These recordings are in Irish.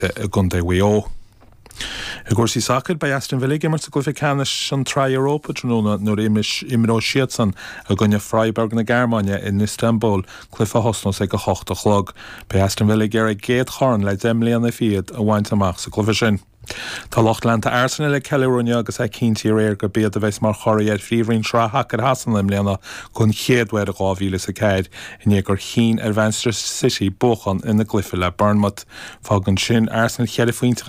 i gContae Mhaigh Eo. I gcúrsaí sacair, beidh Aston Villa ag imirt i gcluiche ceannais an tSraith Europa tráthnóna nuair a imreoidh siadsan i gcoinne Freiburg na Gearmáine in Istanbul, cluiche a thosnós ag a hocht a chlog. Beidh Aston Villa ag iarraidh a gcéad chorn le deich mbliana fichead a bhaint amach sa gcluiche sin. Tá lucht leanta Arsenal ag ceiliúradh inniu agus é cinntí aréir gurb iad a bheas mar churaidh ar Phríomhroinn Shraith Shacair Shasana i mbliana don chéad uair ó 2004 i ndiaidh gur chinn ar Mhanchester City buachan ina gcluiche le Bournemouth. Fágann sin Arsenal cheithre phointe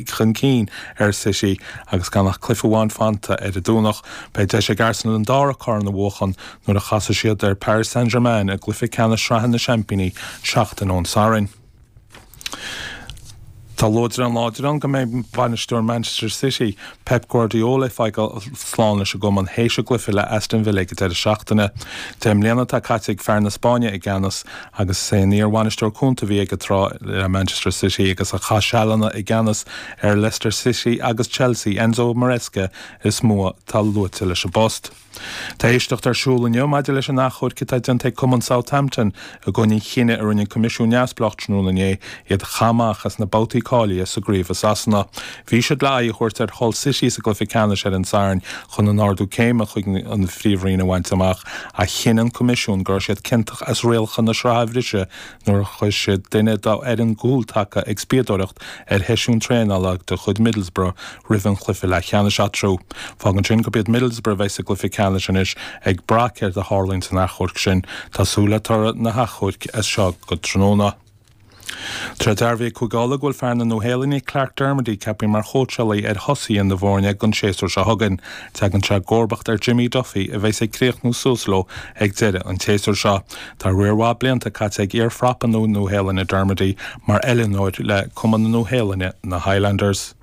chun cinn ar City agus gan ach cluiche amháin fanta ar an Domhnach. Beidh deis ag Arsenal an dara corn a bhuachan nuair a chasfaidh siad ar Paris Saint-Germain i gcluiche ceannais sraithe na Seaimpíní seachtain ón Satharn. Tá luaidreán láidir ann go mbeidh bainisteoir Manchester City, Pep Guardiola ag fágáil slán leis an gcumann théis a gcluiche le Aston Villa ag an deireadh seachtaine. Deich mbliana atá caite ag fear na Spáinne i gceannas agus is é an iar-bhainisteoir cúnta a bhí aige tráth le Manchester City agus a chaith sealanna i gceannas ar Leicester City agus Chelsea, Enzo Maresca, is mó atá luaite leis an bpost. Tá éisteacht ar siúl inniu maidir leis an achomharc atá déanta ag Cumann Southampton i gcoinne an chinnidh a rinne an Coimisiún Neamhspleách tráthnóna inné iad a chaitheamh amach as na babhtaí cáilithe sa gcraobh i Sasana. Bhí siad le aghaidh a thabhairt ar Hull City sa gcluiche ceannais ar an Satharn chun an ardú céime chuig an bPríomhroinn a bhaint amach ach chinn an Coimisiún go raibh siad ciontach as rialacha na sraithe a bhriseadh nuair a chuir siad duine dá bhfoireann cúltaca ag spíodóireacht ar sheisiún traenála de chuid Middlesbrough roimh an gcluiche leathcheannais. eatarthu. Fágann sin gurb iad Middlesbrough a bheidh sa gcluiche ceannais anois. Ag brath céard a tharlaíonn san achomharc sin, tá súil le toradh an achomhairc as seo go tráthnóna. Tá dearbhaithe ag Cúige Uladh go bhfuil fear na Nua-Shéalainne, Clarke Dermody, ceapthaí mar chóitseálaí ar thosaithe na foirne don séasúr seo chugainn, teagann sé i gcomharbacht ar Jimmy Duffy a bheas ag críochnú suas leo ag deireadh an tséasúir seo. Tá riar maith blianta caite ag iar-phrapa na Nua-Shéalainne, Dermody, mar oiliúnóir le Cumann na Nua-Shéalainne, na Highlanders.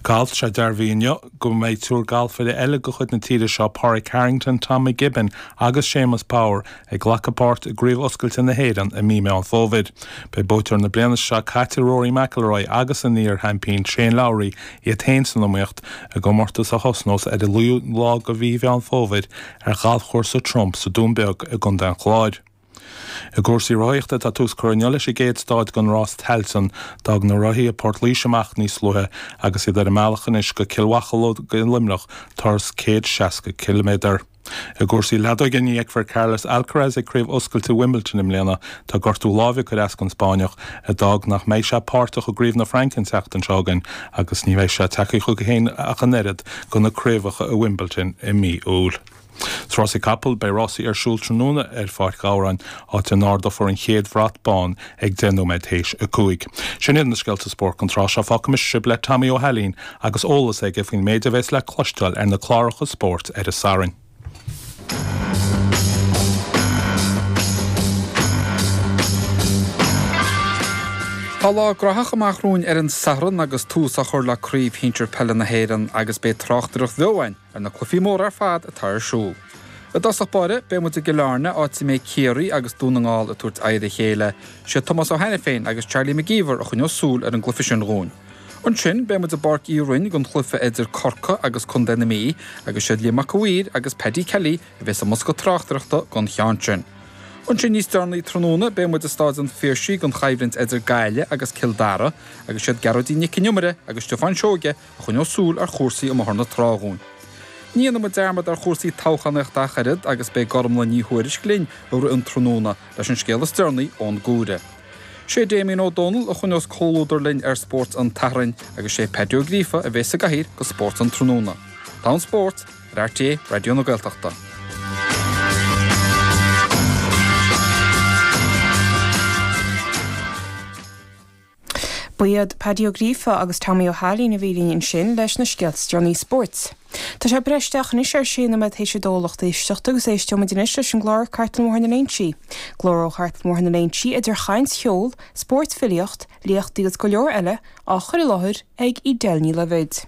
Galf. Tá sé dearbhaí inniu go mbeidh triúr galfaire eile de chuid na tíre seo, Pádraig Harrington, Tom McKibbin agus Séamus Power, ag glacadh páirt i gCraobh Oscailte na hÉireann i mí Meán Fómhair. Beidh buaiteoir na bliana seo caite Rory McIlroy agus an iar-sheaimpín Shane Lowry iad féin san iomaíocht i gcomórtas a thosnós ar an 9ú lá de mhí Mheán Fómhair ar ghalfchúrsa Trump sa Dún Beag i gContae an Chláir. I gcúrsaí rothaíochta, tá tús curtha inniu leis an gcéad stáid den Rás Tailteann. D'fhág na rothaithe Port Laoise amach níos luaithe agus iad ar a mbealach anois go Cill Mocheallóg i Luimneach, turas 160 ciliméadar. I gcúrsaí leadóige, ní fheicfear Carlos Alcaraz ag Craobh Oscailte Wimbledon i mbliana. Tá gortú láimhe ag cur as don Spáinneach, a d'fhág nach mbeidh sé páirteach i gCraobh na Fraince an tseachtain seo chugainn agus ní bheidh sé tagtha chuige féin ach an oiread go na craobhacha i Wimbledon i mí Iúil. Sna rásaí capall, beidh rásaí ar siúl tráthnóna ar Pháirc Ghabhráin, áit a n-ardófar an chéad bhrat bán ag 10 nóiméad théis a cúig. Sin iad na scéalta spóirt don tráth seo. Fágfaimis sibh le Tommy Ó hAilín agus eolas aige faoin méid a bheas le cloisteáil ar na cláracha spóirt ar an Satharn. Tá lá graitheach amach romhainn ar an Satharn agus tús á chur le Craobh Shinsir Peile na hÉireann agus beidh tráchtaireacht bheo againn ar na cluichí móra ar fad atá ar siúl. I dtosach báire, beidh muid i gCill Airne, áit a mbeidh Ciarraí agus Dún na nGall ag tabhairt aghaidh ar a chéile. Siad Tomás Ó hAiniféin agus Charlie McGeever a choinneos súil ar an gcluiche sin dhúinn. Ansin, beidh muid i bPáirc Uí Rinn don chluiche idir Corcaigh agus Contae na Mí, agus siad Liam Mac A Mhaoir agus Paddy Kelly a bheas sa mbosca tráchtaireachta don cheann sin. Ansin, níos deireanaí tráthnóna, beidh muid i Stáid an Phiarsaigh don choimhlint idir Gaillimh agus Cill Dara, agus siad Gearóidín Nic An Iomaire agus Stiofán Seoige a choinneos súil ar chúrsaí i mBóthar na Trá dhúinn. Ní dhéanfaidh muid dearmad ar chúrsaí toghchánaíochta ach oiread agus beidh Gormlaith Ní Thuairisg linn i rith an tráthnóna leis an scéal is deireanaí ón gcomhaireamh. Sé Damien Ó Dónaill a choinneos comhluadar linn ar Spórt an tSathairn agus sé Pádaí Ó Gríofa a bheas sa gcathaoir do Spórt an tráthnóna. Tá an Spórt ar RTÉ Raidió na Gaeltachta. Ba iad Pádaí Ó Gríofa agus Tommy Ó hAilín a bhí linn ansin leis na scéalta is déanaí spóirt. Tá sé breis isteach anois ar sé nóiméad théis a dó lucht éisteachta agus éisteoimid anois leis an gclár Cartlann Bhóthar na Léinsí. Glór ó Chartlann Bhóthar na Léinsí idir chaint, cheol, spórt, filíocht, léachtaí agus go leor eile á chur i láthair ag Edel Ní Loibhéid.